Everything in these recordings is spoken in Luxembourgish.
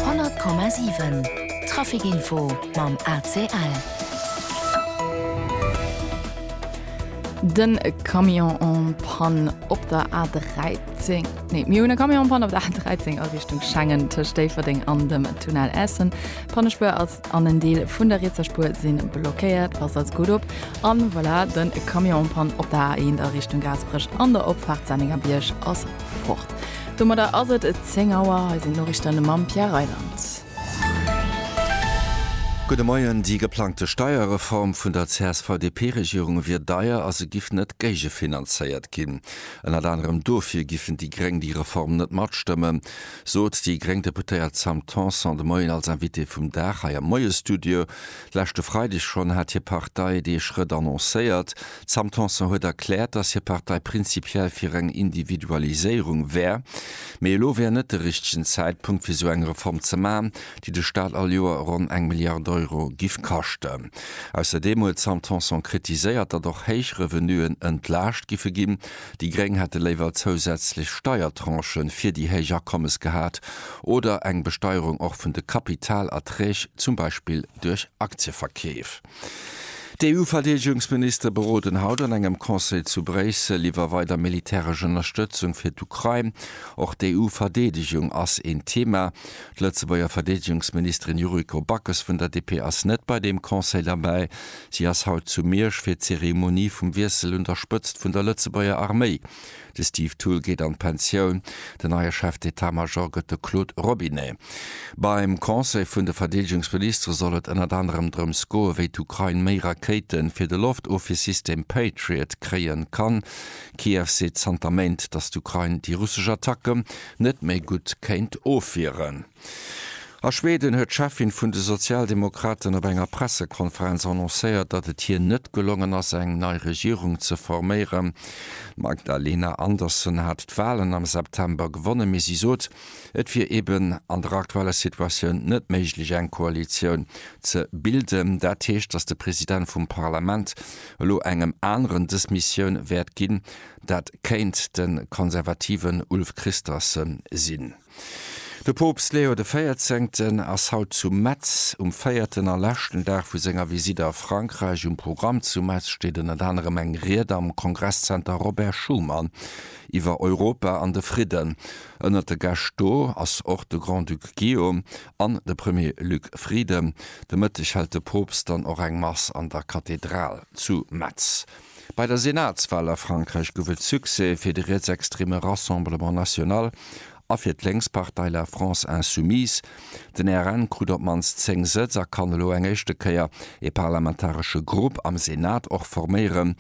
100,7 Trafic-Info mam ACL. De Camion en panne op der A13. Nee, mir hunn e Camion en panne op der A13 a Richtung Schengen tëscht Déifferdeng an dem Tunnel Essen. D'Pannespuer ass an en Deel vun der rietser Spuer sinn blockéiert. Passt als gutt op. An voilà, den Camion en panne op der A1 a Richtung Gaasperech an der Opfahrt Senningerbierg ass fort. Domadder ass et 10 Auer. Hei sinn d'Noriichten mam Pierre Reyland. Gudde Moien. Déi geplangte Steierreform vun der CSV-DP-Regierung wier deier a se giff net géigefinanzéiert ginn. Ënnert anerem dofir giffen déi Gréng déi Reform net matstëmmen, sot déi gréng Deputéiert Sam Tanson de Moien als Invitée vum Dag hei am Moie-Studio. Leschte Freideg schonn hat hir Partei dee Schrëtt annoncéiert. D'Sam Tanson huet erkläert, datt hir Partei prinzipiell fir eng Individualiséierung wär, mee elo wär net de richtegen Zäitpunkt fir esou eng Reform ze maachen, déi de Staat all Joer ronn eng Milliard Euro giff kaschten. Ausserdeem huet d'Sam Tanson kritiséiert, datt och héich Revenuen entlaascht giffe ginn. Déi Gréng hätte léiwer zousätzlech Steiertranchë fir déi héich Akommes gehat oder eng Besteierung och vun de Kapitalerträg, zum Beispill duerch Aktieverkeef. D'EU-Verdeedegungsministere beroden haut an engem Conseil zu Bréissel iwwer weider militäresch Ënnerstëtzung fir d'Ukrain. Och d'EU-Verdeedegung ass een Thema. D'Lëtzebuerger Verdeedegungsministerin Yuriko Backes vun der DP ass net bei deem Conseil derbäi. Si ass haut zu Miersch fir d'Zeremonie vum Wiessel un der Spëtzt vun der Lëtzebuerger Arméi. De Steve Thull geet an d'Pensioun, den neie Chef d'Etat-Major gëtt de Claude Robinet. Beim Conseil vun de Verdeedegungsministere soll et ënnert anerem drëms goen, wéi d'Ukrain méi Rakéite fir de Loftofwier-System Patriot kréie kann. Kiew seet zanter Méint, datt d'Ukrain déi russesch Attacke net méi gutt kéint ofwieren. A Schweden huet d'Cheffin vun de Sozialdemokraten op enger Pressekonferenz annoncéiert, datt et hir net gelongen ass eng nei Regierung ze forméieren. D'Magdalena Andersson hat d'Walen am September gewonnen, mee si sot, et wier eben an der aktueller Situatioun net méiglech eng Koalitioun ze bilden. Dat heescht, datt de President vum Parlament elo engem aneren dës Missioun wäert ginn. Dat kéint de konservativen Ulf Kristersson sinn. De Poopst Leo de Véierzéngten ass haut zu Metz. Um véierten a leschten Dag vu senger Visite a Frankräich. Um Programm zu Metz steet ënnert anerem eng Ried am Kongresszenter Robert Schuman iwwer Europa an de Fridden. Ënnert de Gäscht do ass och de Grand-Duc Guillaume an de Premier Luc Frieden. De Mëtteg hält de Poopst dann och eng Mass an der Kathedral zu Metz. Bei der Senatswal a Frankräich gouf et Succès fir de rietsextreme Rassemblement National a fir d'Lénkspartei La France Insoumise. Den RN krut op d'mannst 10 Sëtz a kann elo eng éischte Kéier ee parlamentaresche Grupp am Senat och forméieren,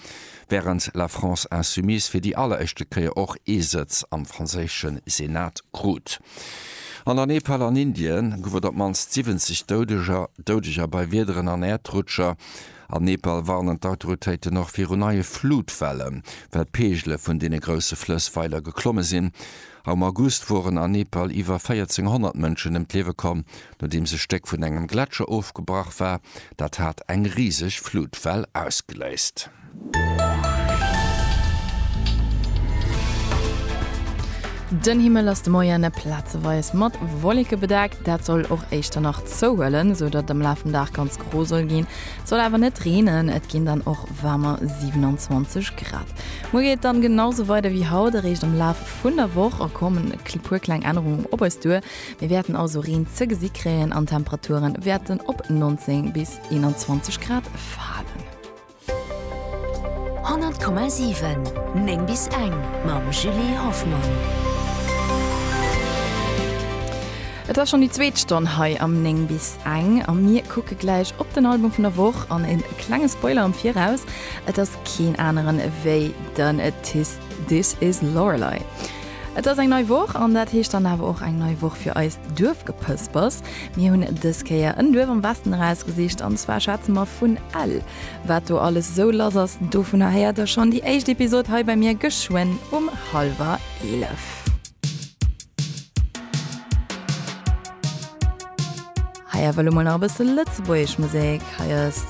wärend La France Insoumise fir déi alleréischte Kéier och ee Sëtz am franséische Senat krut. An der Nepal an Indien gouf et op d'mannst 70 Doudeger Doudeger bei Wiederen an Äerdrutscher. Am Nepal warnen d'Autoritéiten och viru neie Flutwelle, well d'Peegele vun deene grousse Flëss weider geklomme sinn. Am August woren an Nepal iwwer 1400 Mënschen ëm d'Liewe komm, nodeems e Stéck vun engem Gletscher ofgebrach war. Dat hat eng riseg Flutwell ausgeléist. Den Himmel ass de Moien plazeweis mat Wolleke bedeckt, dat soll och éischter nach zouhuelen, sou datt et am Laf vum Dag ganz Pro soll ginn. Et soll awer net reenen, et ginn dann och waarmer, 27 Grad. Muer geet et dann genau sou weider wéi haut, eréischt am Laf vun der Woch kommen e puer kleng Ännerungen op eis duer. Mir wäerten also Reen ze gesi kréien an d'Temperature wäerten op 19 bis 21 Grad falen. 100,7, 9 bis eng mam Julie Hoffmann. Et ass schonn déi zweet Stonn hei am 9 bis eng a mir kucke gläich op den Album vun der Woch an e klenge Spoiler am Viraus, et ass keen aneren ewéi den This Is Lorelei. Et ass eng nei Woch an dat heescht dann awer och eng nei Woch fir eist Duerfgepëspers. Mir hunn dës Kéier en Duerf am Westen erausgesicht an zwar schwätze mer vun Ell. Wat do alles esou lass ass, dovunner héiert der schonn déi éischt Episod hei bei mir geschwënn um hallwer eelef. Hei awer elo mol nach e bësse lëtzebuergesch Musek. Hei ass.